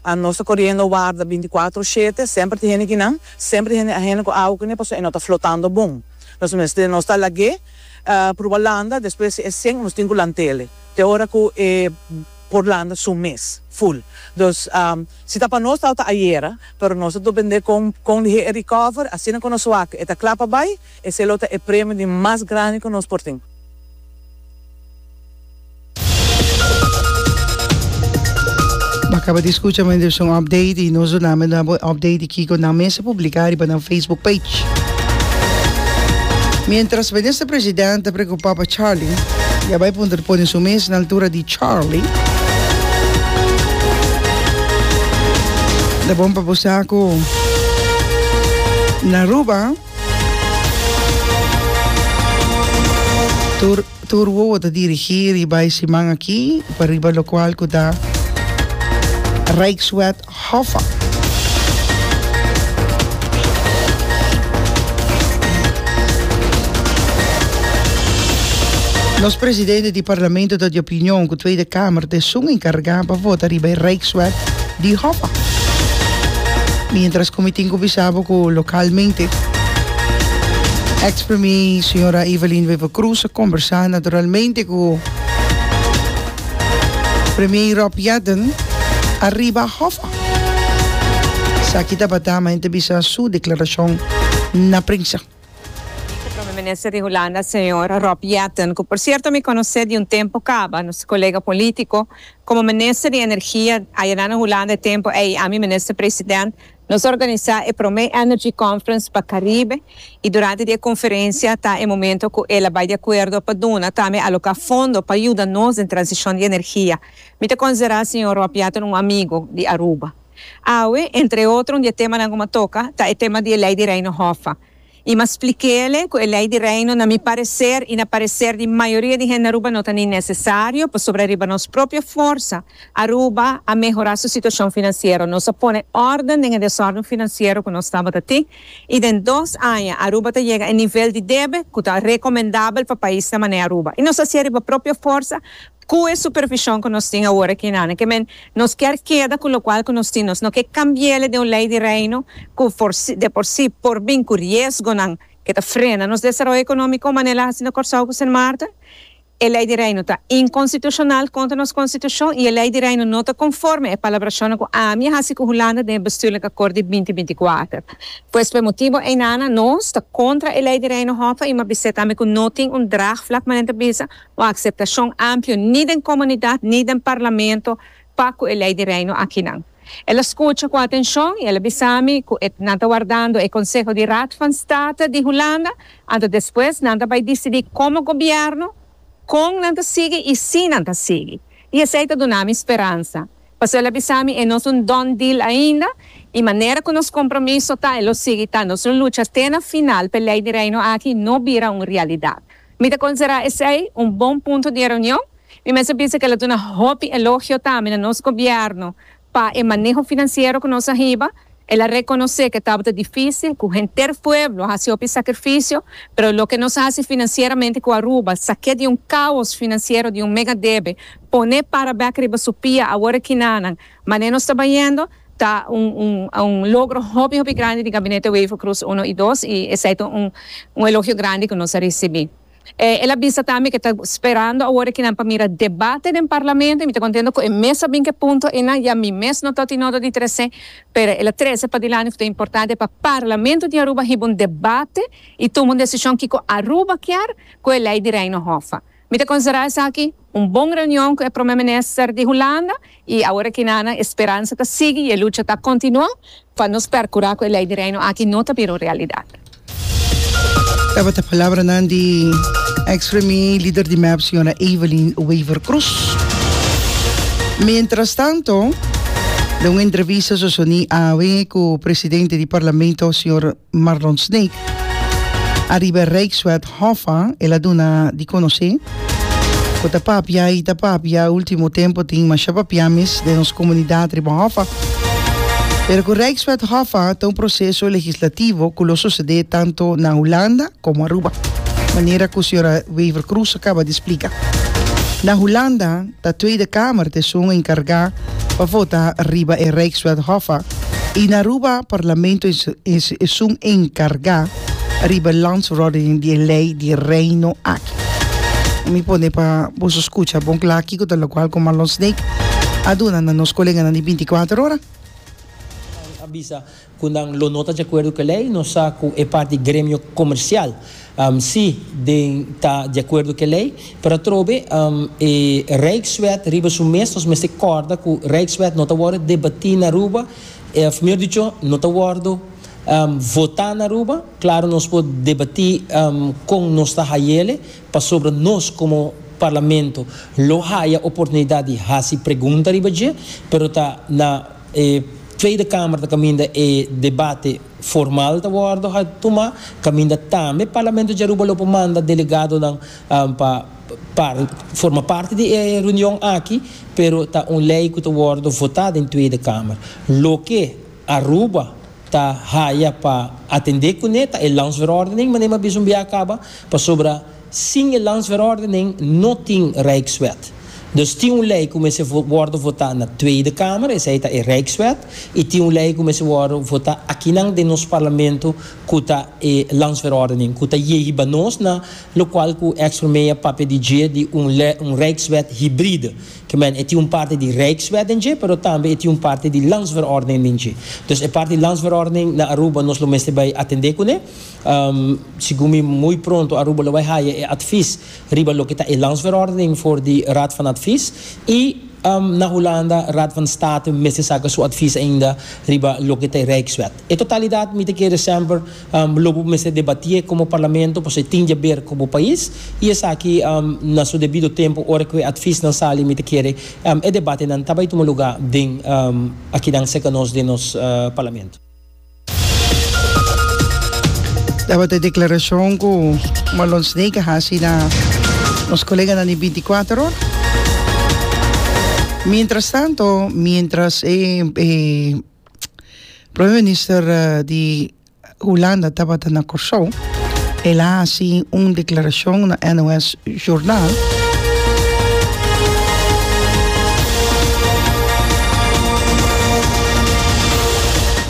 A nos ta coriendo warda binticuatro shete, semper tin hende kinan, semper tin hende ahene cu awo cune pasobra e no ta flotando bon. Nos mester nos ta lag'é pruba landa, despues si e seng nos tin cu lant'ele te ora cu e por landa su mes ful. Dus si ta pa nos tawata ta ayera, pero nos ta dopendé con con lihe e recover, asina cu nos wak e ta cla pa bay, esey lo ta e premio di mas grandi cu nos por tin. Bo a caba di scucha mi debe un update y nos duna mi nuevo update di kico nan mester publica riba nan Facebook page. Mientras Minister President ta preocupa pa Charly y a bay puntra pone su mes na altura di Charly. Ta bon pa bo sa cu na Aruba tur Tur wowo ta dirigí riba e siman akí pa riba lokual ku ta Rijkswet Hoffa. Nos presidente di Parlamento ta di opinion ku Tweede Kamer ta esun enkargá pa vota riba e Rijkswet. di hopa. Mientras cu mi tin cu bisa bo cu localmente ex premier señora Evelyn Wever Croes a conversa naturalmente cu premier Rob Yatten ariba hopa. Esaki tabata, ma hende bisa su declaracion na prensa. Vice Prome Minister di Hulanda Señor Rob Jetten, cu por cierto mi conoce di un tempo caba, nos colega politico, como Minister di Energia ayera na Hulanda e tempo ey y ami Minister President, nos organiza e prome Energy Conference pa Caribe y durante di e conferencia ta e momento cu el a bay di acuerdo pa duna tambe aloca fondo pa yuda nos den transicion di energia. Mi ta considera Señor Rob Jetten un amigo di Aruba. Awe, entre otro un di e temanan ku mi a toka ta e tema di e Lei di Reino Hòf. I mi a splik'é ku e Lei di Reino na mi pareser i na pareser di mayoria di hende Aruba no ta ni nesesario pasobra riba nos propio forsa Aruba a mehorá su situashon finansiero. Nos a pone òrden den e desòrden finansiero ku nos tabata tin i den dos aña Aruba ta yega e nivel di debe ku ta rekomendabel pa paisnan mané Aruba. I nos a hasié riba propio forsa. Cu e supervision cu nos tin awor aki na Nacmen, nos kier keda cu locual cu nos tin, nos no ke cambiele den un ley di Reino cu de por si por bin cu riesgonan ke ta frena nos desaroyo economico manera el a haci na Corsou cu Sint Maarten. E ley di Reino ta inconstitucional contra nos Constitucion y e ley di Reino no ta conforme e palabracionnan cu ami a haci cu Hulanda den e Bestuurlijk Akkoord di binti binti kuater. Pues p'e motibo ei na nos ta contra e ley di Reino Hoffe y m'a bisa tambe cu no tin un draagvlak manera ta bisa, Un akseptashon amplio ni den komunidat ni den parlamento pa ku e Lei di Reino akinan. El a skucha ku atenshon i el a bisa mi ku e nan ta wardando e konseho di Raad van State di Hulanda anto despues nan ta bai disidí komo gobièrnu kon nan ta sigui i si nan ta sigui. I esei ta duna mi speransa. Pasó el a bisa mi e no es un done deal ainda i manera ku nos kompromiso ta e lo sigui ta nos lo lucha te na final p'e Lei di Reino aki no bira un realidat. Mi ta considera esey un bon punto di e reunion. Mi mester bisa cu el a duna hopi elogio tambe na nos gobierno pa e maneho financiero cu nos a hiba. El a reconoce cu e tabata dificil, cu henter pueblo a haci hopi sacrificio, pero loke nos a haci financieramente cu Aruba, saque di un caos financiero di un mega debe, pone para bek riba su pia awor e kinanan, mane nos ta bayendo, Ta un un un logro hopi hopi grandi di Gabinete Wever Croes uno i dos i esei ta un un elogio grandi ku nos a risibí. E el a bisa tambe ku e ta sperando awor e kinan pa mira debate den Parlamento i mi ta kontento ku e mes a bin ku e punto einan ya mi mes no ta oti nodo di tres'é pero el a trese padilanti ku ta importante pa Parlamento di Aruba hiba un debate i tuma un desishon kiko Aruba kier ku e lei di Reino Hof. Mi ta considera esaki un bon reunion cu e Prome Minister di Hulanda y awor ki nan e speransa ta sigui y e lucha ta continua pa nos percura cu e Ley di Reino aki no ta bira un realidad. Tabata palabranan di ex premier y lider di mep señora Evelyn Wever Croes. Mientras tanto den un entrevista sosoni awe cu presidente di Parlamento señor. Marlon Sneek ariba e Rijkswet Hof an, el a duna di konosé ku ta papia i ta papia, último tempu tin masha papiamis den nos komunidat riba Hof a. Pero ku Rijkswet Hof a ta un proseso legislativo ku lo susedé tantu na Hulanda komo Aruba, manera ku señora Wever-Croes a kaba di splika. Na Hulanda. Ta Tweede Kamer ta esun enkargá pa vota riba e Rijkswethofa i na Aruba Parlamento ta esun enkargá riba e Landsverordening di e lei di Reino aki. Mi pone pa boso skucha bon kla kiko ta lokual ku Marlon Snake a duna na nos koleganan di binti kuater ora. Cu nan lo no ta dje acuerdo cu e ley, nos sa cu e parti gremio comercial si den ta dje acuerdo cu e ley, pero atrobe e Rijkswet riba su mes, nos mester corda cu Rijkswet no ta wordo debati na Aruba, of mejor dicho, no ta wordo vota na Aruba. Claro nos por debati con nos ta hayele, Pasobra nos komo Parlamento lo haya oportunidat di hasi pregunta riba dje, pero ta na e Tweede Kamer ta kaminda e debate formal ta wòrdu ha tuma, kaminda tambe Parlamento di Aruba lo por manda delegadonan pa par forma parti di e reunion aki, pero ta un lei ku ta wòrdu votá den Tweede Kamer. Loke Aruba ta haya pa atendé kuné ta e Landsverordening, manera mi a bisa un biaha kaba, pasobra sin e Landsverordening no tin Rijkswet. Dus tin un lei ku mester wòrdu votá na Tweede Kamer, esei ta e Rijkswet, i tin un lei ku mester wòrdu votá akinan den nos Parlamento ku ta e Landsverordening, ku ta ye hiba nos na lokual ku ex-Premier a papia di dje di un Rijkswet hibride. Amen. E tin un parti di Rijkswet den dje, pero tambe e tin un parti di Landsverordening den dje. Dus e parti di Landsverordening na Aruba nos lo mester bai atendé kuné. Segun mi muy pronto Aruba lo bai haya e advis riba loke ta e Landsverordening for di Raad van Advies. I na Hulanda Raad van State mester saka su advis ainda riba loke ta e Rijkswet. E totalidat mester kere semper lo bo mester debatié komo parlamento pasobra e tin diaber ku bo pais i esaki na su debido tempu ora ku e atvisnan sali mester kere e debatenan ta bai tuma lugá den akinan serka nos den nos parlamento. Tabata e deklarashon ku Marlon Snake a hasi na nos koleganan di bintikuater ora. Mientras tanto, mientras e. Prome minister di Hulanda tabata na Kòrsou. El a hasi un deklarashon na NOS Journal.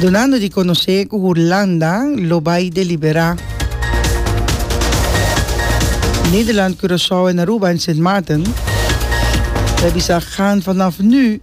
Dunando di konosé ku Hulanda lo bai deliberá Nederland, Curaçao en Aruba en Sint Maarten, ta bisa, Gaan vanaf nu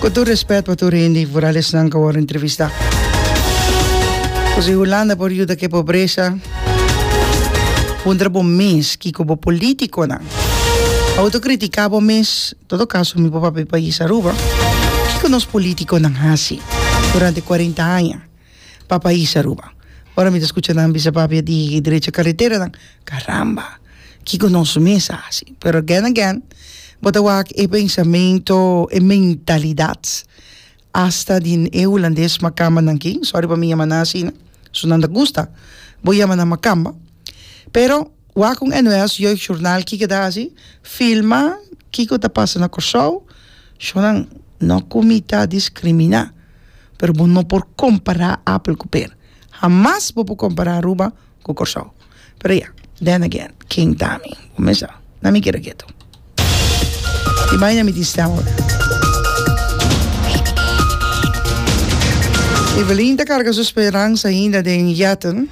Ku tur respet pa tur hende i vooral esnan ku a wòrdu entrevistá. Ku si Hulanda por yuda ku e pobresa, puntra bo mes kiko bo polítikonan a wòrdu kritiká bo mes? Todo kaso mi por papia e pais Aruba, kiko nos polítikonan hasi durante kuarenta aña? pa pais Aruba. Ora mi ta scucha nan bisa papi a digi derecha carretera nan, caramba kico nos mes a haci? Pero again again bo ta wak e pensamento, e mentalidad hasta di e hulandes macamba nan kin, sorry pa mi yama nan asina, su nan ta gusta bo yama nan macamba, pero wak un NOS jeugdjournal kico ta haci, filma kico ta pasa na Kòrsou, show nan no cu mi ta discrimina. pero bo no por compara apel cu per hamas bo por compara Aruba cu Corsou pero ya then again ken ta mi bo me sa na mi kere keto y bay na mi tin stem ora Evelyn ta carga su speranza ainda den yatten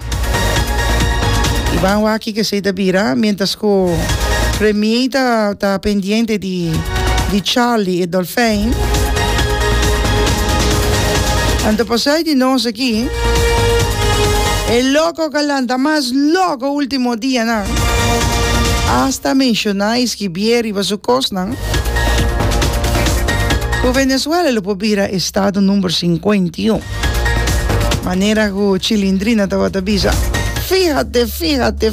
y ban wak aki cu esey ta bira mientras cu premier ta pendiente di di Charlie e Dolfijn. Anto pasai di nos aki, e loco galanta mas loco ultimo dianan hasta menciona y skibié riba su cosnan cu Venezuela lo por bira estado number cincuenta y un. Manera cu Chilindrina tabata bisa, Fíjate, fíjate,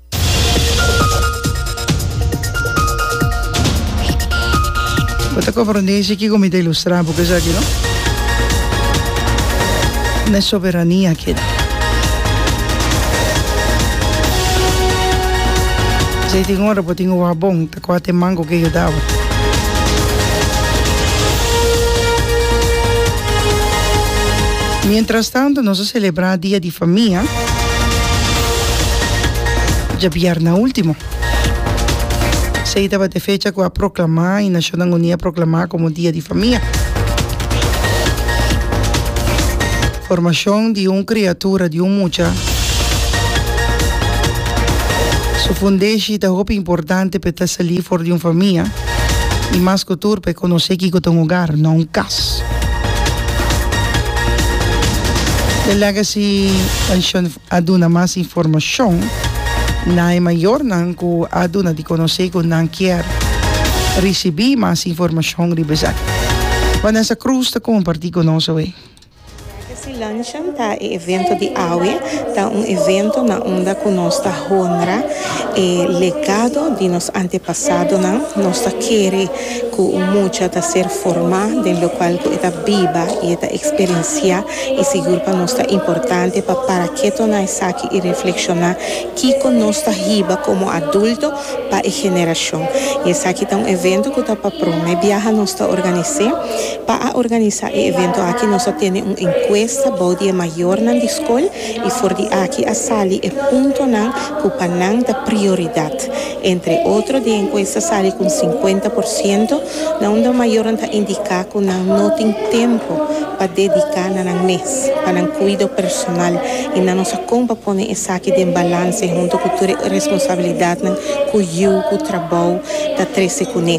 Bo ta comprende si kiko mi ta ilustra bo ku esaki no? No e soberania keda. Esei tin ora bo tin oha bon. Kua te mango ke yudawa? Mientras tanto nos a celebra dia di famia djabièrnè ultimo. Esei tabata e fecha ku a proclamá i Nashonnan Uní a proclamá komo dia di famia. Formacion di un criatura, di un mucha, su fundeshi ta hopi importante p'e ta sali for di un famia y mas cu tur p'e conoce kico ta un hogar, no un cas. The Legacy Pension a duna mas informacion na e mayornan cu a duna di conoce cu nan kier ricibi mas informacion riba esaki. Vanessa Cruz ta comparti cu nos awe. Legacy Luncheon ta e evento di awe. Ta un evento na unda cu nos ta honra e legado di nos antepasadonan. Nos ta kere cu un mucha ta ser forma den locual cu e ta biba y e ta experiencia y sigur pa nos ta importante pa para keto na esaki y reflexiona kico nos ta hiba como adulto pa e generacion. Y esaki ta un evento cu ta pa prome biaha nos ta organise. Pa a organisa e evento aki nos a tene un encuesta bou di e mayornan di scol y for di aki a sali e puntonan cu pa nan ta prioridad. Entre otro di e encuesta sali cu un cincuenta por ciento na un di mayornan ta indica cu nan no tin tempo pa dedica na nan mes pa nan cuido personal y nan nos a con pa pone esaki den balance hunto cu tur e responsabilidadnan cu yiu cu trabou ta trece cune.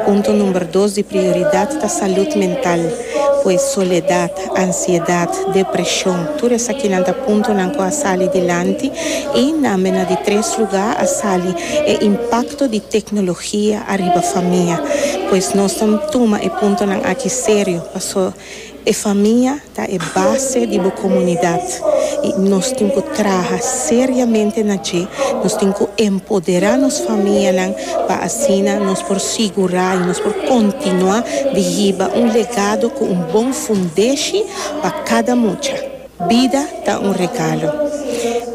Punto number dos di prioridad ta salud mental, pues soledad, ansiedad, depresion, tur esakinan ta puntonan cu a sali dilanti y na ambe na di tres lugar a sali e impacto di tecnologia ariba famia. Pues nos ta tuma e puntonan aki serio paso. E famia ta e base di bo komunidat i nos tin ku traha seriamente na dje. Nos tin ku empoderá nos famianan pa asina nos por sigurá i nos por kontinuá di hiba un legado ku un bon fundeshi pa kada mucha. Bida ta un regalo.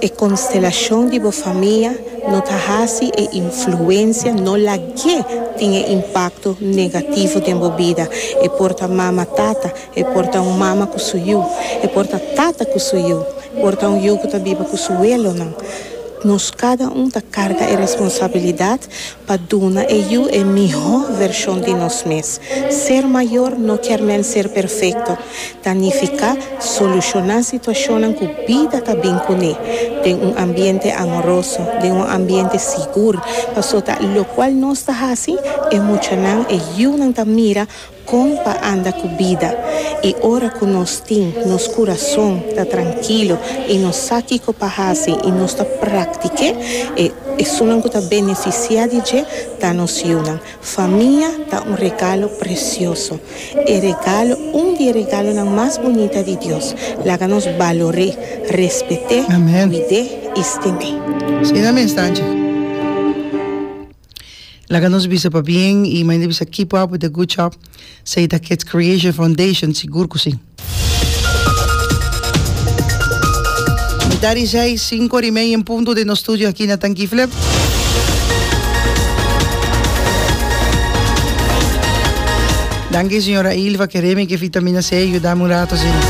E konstelashon di bo famia no ta hasi e influensia no lag'é tin e impakto negativo den bo bida. E por ta mama tata, e por ta un mama ku su yu, e por ta tata ku su yu, e por ta un yu ku ta biba ku su welonan. Nos kada un ta karga e responsabilidat. Pa duna e yu e mihó vershon di nos mes. Ser mayor no kier men ser perfekto, ta nifiká solushoná situashonnan ku bida ta bin kuné den un ambiente amoroso, den un ambiente sigur. Pasobra lokual nos ta hasi, e muchanan, e yunan ta mira Kon pa anda ku bida i ora ku nos tin nos kurason ta trankilo i nos sa kiko pa hasi i nos ta praktik'é, e esunnan ku ta benefisiá di dje ta nos yunan. Famia ta un regalo presioso. E regalo, un di e regalonan mas bunita di Dios. Laga nos balor'é, respet'é, kuid'é i stim'é. Asina mes ta, dje. Laga nos bisa pa bien y mainta bisa keep up with the good job Saita Kids Creation Foundation sigur cu si. Mita di seis, cinco ora y media en punto den nos studio aki na Tanki Flip. Danki señora Ilva ke remi ke vitamina C yudami un rato asina.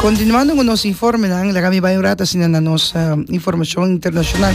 Continuando cu nos informenan laga mi bay un rato asina na nos informacion internacional.